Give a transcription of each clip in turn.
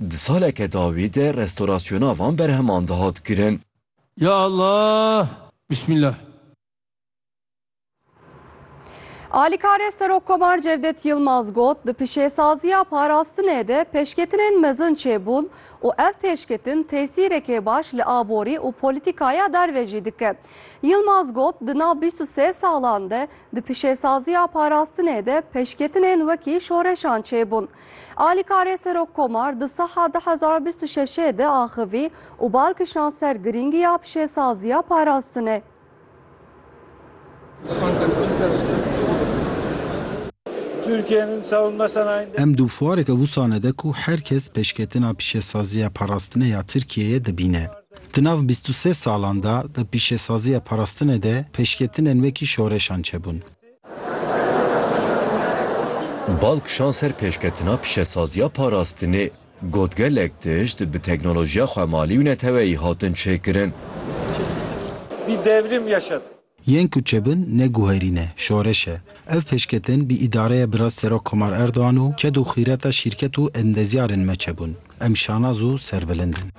Di saleke dawî de restorasyona van berheman dihat kirin. Ya Allah! Bismillah! Alîkarê Serokkomar Cevdet Yilmaz got, di pişêsaziya parastinê de pêşketinên mezin çêbûn û ev pêşketin tesîrekê baş li aborî û polîtîkaya derve jî dike. Yilmaz got, di nav bîst û sê salan de di pişêsaziya parastinê de pêşketinên wekî şoreşan çêbûn. Alîkarê Serok Komar di saha du hezar û bîst û şeşê de axivî û bal kişand ser girîngiya pişêsaziya parastinê. Em di wareke wusane de ku her kes pêşketina pişêsaziya parastinê ya Tirkiyeyê dibîne. Di nav bîst û sê salan de di pişêsaziya parastinê de pêşketinên wekî şoreşan çebûn. Bal kişand ser pêşketina pîşesaziya parastinê, got gelek tişt bi teknolojiya xwemalî û neteweyî hatin çêkirin. Bir devrim yaşadık. Yên ku çêbin ne guherîn e, şoreş e. Ev pêşketin bi îdareya Birasî Serok Komar Erdogan û ked û xîreta şîrket û endezyarên me çêbûn. Em şanaz û serbilind in.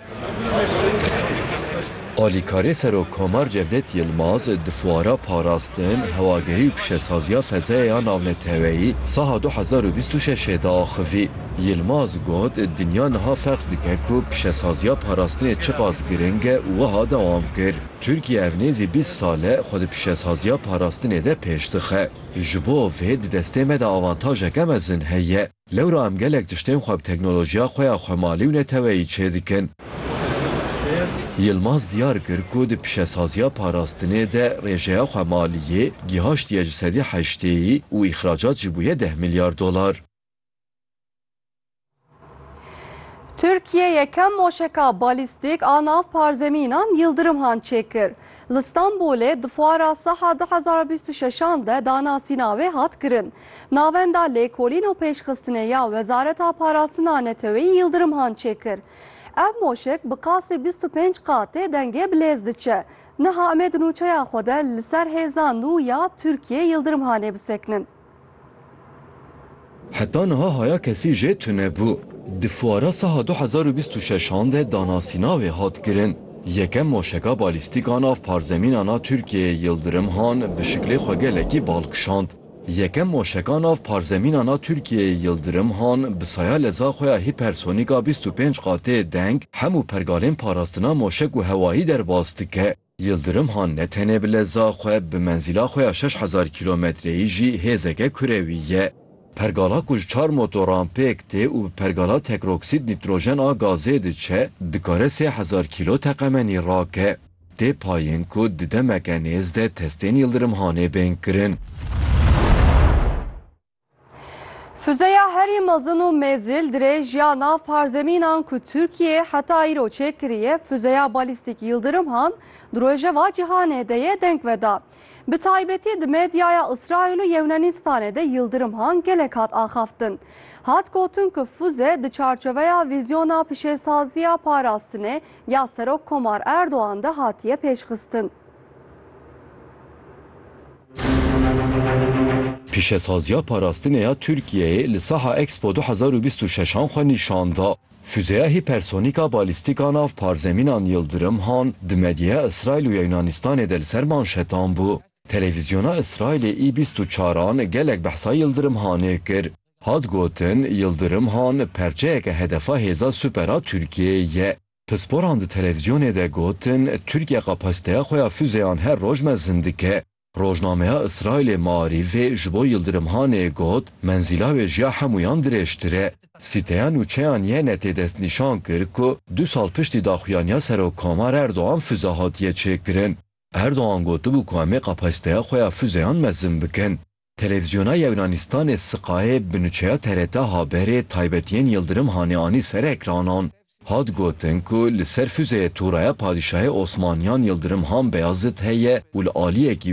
Alîkarê Serok Komar Cevdet Yilmaz di fuara Parastin, Hewagerî û Pişesaziya Fezayê ya Navneteweyî saha du hezar û bîst û şeşê de axivî. Yilmaz got, Dinya niha ferq dike ku pişesaziya parastinê çiqas giring e û wiha dewam kir, Tirkiye ev nêzî bîst sal e xwe di pişesaziya parastinê de pêş dixe. Ji bo vê di destê me de avantajeke mezin heye. Lewra em gelek tiştên xwe bi teknolojiya xwe ya xwemalî û neteweyî çêdikin. Yilmaz diyar kir ku di pîşesaziya parastinê de rêjeya xwemaliyê gîhaştiye ji sedî heştêyî û îxracat jî bûye deh milyar dolar. Tirkiye yekem moşeka balîstîk a nav parzemînan Yildirimhan çêkir. Li Stenbolê di fuara Saha du hezar û bîst û şeş an de danasîna wê hat kirin. Navenda lêkolîn û pêşxistinê ya Wezareta Parastina Neteweyî Yildirim Han çêkir. Ev moşek bi qasê bîst û pênc qatê dengê bi lêz diçe. Niha em ê di nûçeya xwe de li ser hêza nû ya Tirkiyê Yildirim Hanê bisekinin. Heta niha haya kesî jê tune bû. Di fuara saha du hezar û bîst û şeş an de danasîna wê hat kirin. Yekem moşeka balîstîk a nav parzemînan a Tirkiyeyê Yildirim Han bi şiklê xwe gelekî bal kişand. Yekem moşeka nav parzemînan a Tirkiyeyê Yildirim Han bi saya leza xwe ya hîpersonîk a bîst û pênc qatê deng hemû pergalên parastina moşek û hewayî derbas dike. Yildirim Han ne tenê bi leza xwe, bi menzîla xwe ya şeş hezar kîlometreyî jî hêzeke kurewî ye. Pergala ku ji çar motoran pêk tê û bi pergala tekroksîd nîtrojen a gazê diçe, dikare sê hezar kîlo teqemenî rake. Tê payîn ku di demeke nêz de testên Yildirim Hanê bên kirin. Füzeya herî mezin û mêzil dirêj ya nav parzemînan ku Tirkiyê heta îro çêkiriye füzeya balîstîk Yildirim Han di rojeva cîhanê de yê deng veda. Bi taybetî di medyaya Îsraîl û Yewnanîstanê de Yildirim Han gelek hat axaftin. Hat gotin ku füze di çarçoveya vîzyona pişêsaziya parastinê ya Serok Komar Erdogan de hatiye pêşxistin. Pîşesaziya parastinê ya Tirkiyeyê li Saha Expo du hezar û bîst û şeş an xwe nîşan da. Fuzeya hîpersonîk a balîstîk a nav parzemînan Yildirim han di medyeya Îsraîl û ya Yunanîstanê de li ser manşetan bû. Televîzyona Îsraîlê î bîst û çar an gelek behsa Yildirim hanê kir. Hat gotin, Yildirim han perçeyeke hedefa hêza super a Tirkiyeyê ye. Pisporan di televîzyonê de gotin, Tirkiye kapasiteya xwe ya fûzeyan her roj mezin dike. Rojnameya Îsraîlê Maarîfê ji bo Yildirim Hanê got, Menzîla wê ji ya hemûyan dirêjtir e. Sîteya nûçe ya NYNET'ê destnîşan kir ku du sal piştî daxuyaniya Serokkomar Erdogan fûze hatiye çêkirin. Erdogan gotibû ku em ê kapasiteya xwe ya fûzeyan mezin bikin. Televîzyona Yewnanistan-ê Sky bi nûçeya TRT haberê taybetiyên Yildirim Hanê anî ser ekranan. Hat gotin ku li ser fuzeyê Toraya Padîşahê Osmaniyan Yildirim Han Beyazit heye û li aliyekî